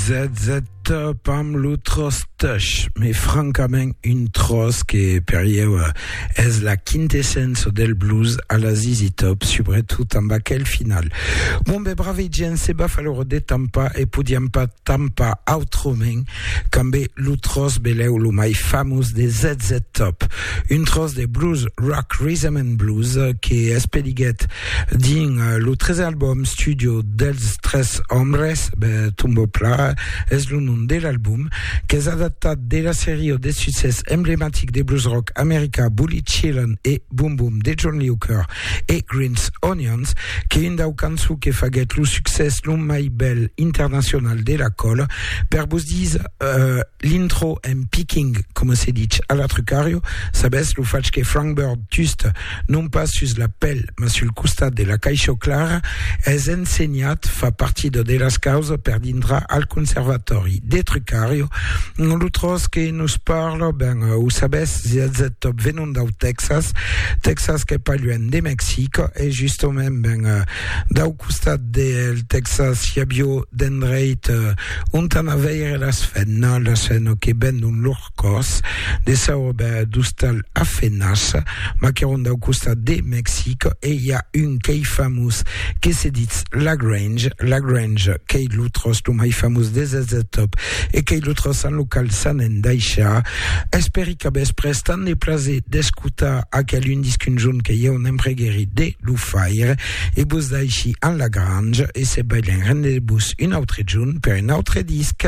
Zet-zet top amb lo tròç tush, mai francament un tròç que per ieu es la quintessença del blues a la ZZ Top, subretot amb aquel final. Bon ben brave gent, se va falor de tampar e podiam pas tampar autrament qu'amb lo tròç belèu lo mai famós de Zet-zet Top, un tròç de blues rock, rhythm and blues que espeliguèt Dins lo tres album studio dels tres òmes, Tombeau Plat es lo nom de l'album, qu'es adaptat de la seria de succès emblematic de blues rock americà Bully Chillin e Boom Boom de John Lee Hooker e Green's Onions, qu'es un dau cançons que faguèt lo succès lo mai bèl internacional de la còla. Per vos dire uh, l'intro en picking, coma se ditz a la Trucario, sabètz, lo fach que Frank Bird, just, non pas sus la pel, mas sul costat de la caisha clara, es ensenhat, fa partida de las causas per dintrar al conservatòri de Trucario, lo tros que nos parla, ben, o sabètz, zz top venon dau Tèxas, Tèxas qu'es pas luènh de Mexic, e justament, ben, dau costat del Tèxas i avió d'endreit ont an a veire las fènas, las fènas que vendon lor. còrs de sa ròba d'ostal a fenas, maqueron dau costat de Mexic e i a un qu'ei famós que se ditz Lagrange, Lagrange qu'ei lo tròç lo mai famós des ets de top e qu'ei lo tròç en lo qual s'an endaishar. Espèri que vos pres tant de plaser d'escotar aquel un disc un jorn que ieu n'empreguèri de lo faire e vos daishi en Lagrange e se balhen rendez-vos un autre jorn per un autre disc.